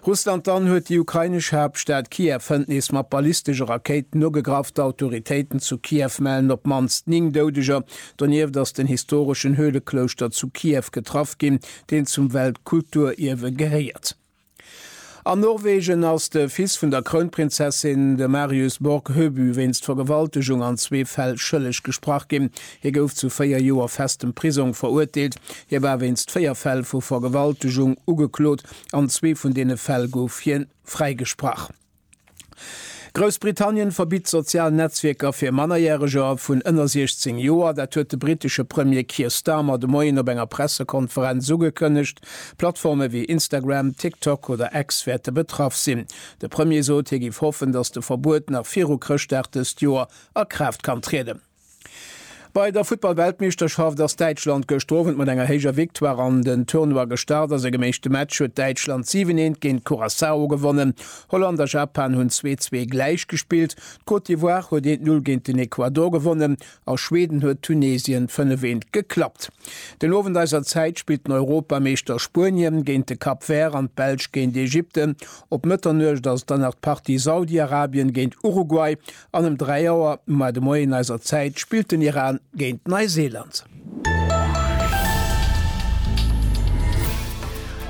Russland Dann huet déi ukrainesch Haaptstad Kiew hënt nees mat ballistesche Rakéiten ugegraff. D'Autoritéiten zu Kiew mellen op d'mannst 9 Doudeger. Donieft ass den historeschen Höhleklouschter zu Kiew getraff ginn, deen zum Weltkulturierwe gehéiert. An Norwegen ass de Fils vun der Krounprinzessin, de Marius Borg Høby, wéinst Vergewaltegung an zwee Fäll schëlleg gesprach ginn. Hie gouf zu véier Joer festem Prisong verurteelt. Hie war wéinst véier Fäll vu Vergewaltegung ugeklot. An zwee vun deene Fäll gouf hien fräigesprach. Groussbritannien verbitt sozial Netzwierker fir Mannerjäreger vun ënner 16 Joer. Dat huet de britesche Premier Keir Starmer de Moien op enger Pressekonferenz ugekënnegt. Plattforme wéi Instagram, TikTok oder X wäerte betraff sinn. De Premier sot, hie giff hoffen, datt de Verbuet nach viru Chrëschtdag dëst Joer a Kraaft kann trieden. Bei der Futtball-Weltmeeschterschaft ass Däitschland gëschter Owend mat enger héijer Victoire an den Tournoi gestart. A sengem éischte Match huet Däitschland 7, 1 géint Curaçao gewonnen. Holland a Japan hunn 2, 2 gläich gespillt. D'Côte d'Ivoire huet 1, 0 géint den Ecuador gewonnen a Schweden huet Tunesien 5, 1 geklappt. Den Owend eiser Zäit spillt den Europameeschter Spuenien géint de Cap Vert an d'Belsch géint Ägypten. Op Mëtternuecht ass dann nach d'Partie Saudi-Arabien géint Uruguay An ëm 3 Auer mar de Moien eiser Zäit spillt den Iran géint Neiseeland.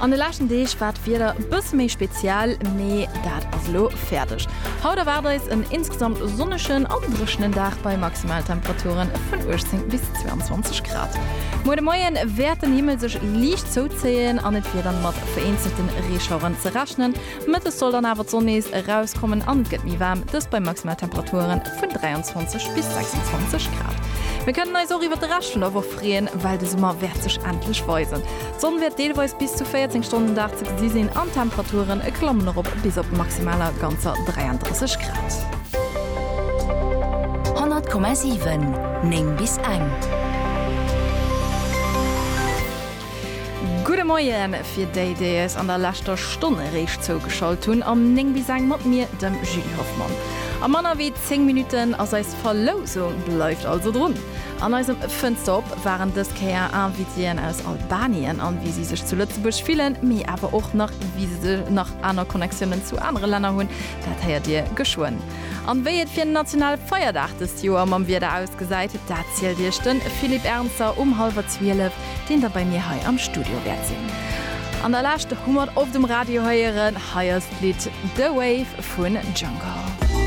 An de leschten Deeg war d'Wieder e bësse méi speziell, mee dat ass elo fäerdeg. Haut erwaart eis en insgesamt sonnegen a dréchenen Dag bei Maximaltemperature vun 18 bis 22 Grad. Muer de Moie wäert den Himmel sech liicht zouzéien an et wier dann mat vereenzelte Reeschaueren ze rechnen. Mëttes soll dann awer d'Sonn nees erauskommen an et gëtt méi waarm, dëst bei Maximaltemperature vun 23 bis 26 Grad. Mir kënnen eis och iwwert de Rescht vun der Woch freeën, well de Summer wäert sech endlech weisen. D'Sonn wäert deelweis bis zu 14 Stonnen den Dag ze gesi sinn an d'Temperature klammen erop bis op maximaler ganzer 33 Grad. 100,7 Néng bis eng. Gudde Moien fir déi, déi eis an der leschter Stonn eréischt zougeschalt hunn. Am 9 bis eng mat mir, dem Julie Hoffmann. A manner wéi 10 Minutten ass eis Verlousung. Bleift also drun! An eisem Fënster op waren dës Kéier Invitéen aus Albanien an wéi si sech zu Lëtzebuerg fillen, mee awer och nach wéi se nach aner Connectiounen zu anere Länner hunn, dat héiert Dir geschwënn. An wéi et fir national Feierdag dëst Joer mam Wieder ausgesäit, dat zielt Iech de Philippe Ernzer um hallwer 12. deen da bei mir hei am Studio wäert sinn. An der Lescht hu mer et op dem Radio héieren, hei ass d'Lidd The Wave vun Django.